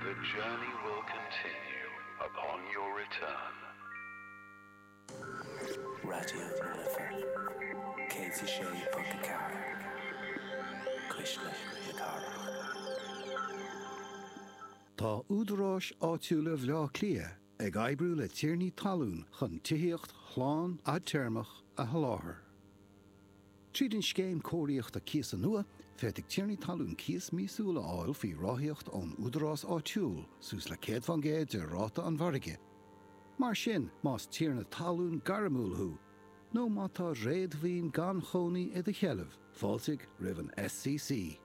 The journey will continue upon your return. Raidió na Life 106.4 Cuisle na Cathrach. Tá údaráis áitiúla Bhaile Átha Cliath ag oibriú le tiarnaí talún chun tithíocht shlán fhadtéarmach a sholáthar. Tríd an scéim cóiríochta cíosa nua, féadfaidh tiarnaí talún cíos míosúil a fháil faoi ráthaíocht ón údarás áitiúil, suas le 100 fán gcéad de ráta an mhargaidh. Mar sin, más tiarna talún gairmiúil thú, nó má tá réadmhaoin gan chónaí i do sheilbh, fáiltigh roimh an SCC.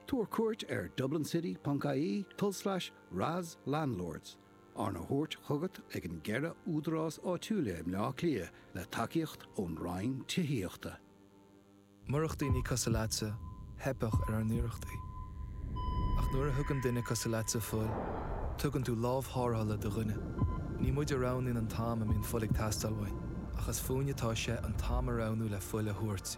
Tabhair cuairt ar dublincity.ie tulslais RAS Landlords, arna thabhairt chugat ag an gceithre údarás áitiúla i mBleá Cliath le tacaíocht ón Roinn Tithíochta. Murach daoine cosúil leatsa, theipfeadh ar ár n-iarrachtaí. Ach nuair a thugann duine cosúil leatsa fuil, tugann tú lámh tharrthála do dhuine. Ní muid a roghnaíonn an t-am a mbíonn fuil ag teastáil uainn, ach is fúinn atá sé an t-am a roghnú le fuil a thabhairt.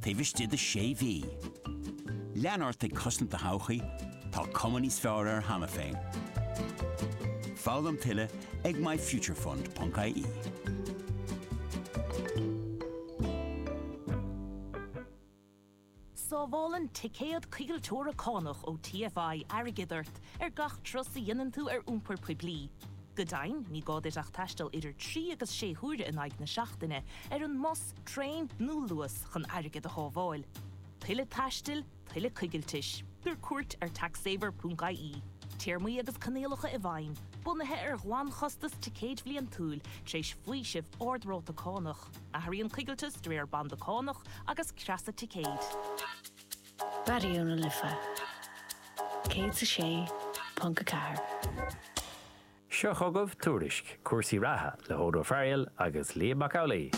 taobh istigh de shé mhí. Lean ort ag cosaint do thodhchaí, tá cuma níos fearr air cheana féin. Foghlaim tuilleadh ag myfuturefund.ie. Sábhálann ticéad coigilteora cánach ó TFI airgead ort ar gach turas a dhéanann tú ar iompar poiblí. Go deimhin, ní gá duit ach taisteal idir trí agus sé huaire in aghaidh na seachtaine ar an mbus, traein nó Luas chun airgead a shábháil. Tuilleadh taistil, tuilleadh coigiltis. Tabhair cuairt ar taxsaver.ie. Téarmaí agus coinníollacha i bhfeidhm, bunaithe ar ghlanchostas ticéid bhliantúil, tar éis faoiseamh ard-ráta cánach. Athraíonn coigilteas de réir banda cánach agus creasa ticéid. Raidió na Life 106.4. Seo chugaibh Tuairisc cúrsaí reatha le hOdhrán Ó Fearghail agus Liam Mac Amhlaigh.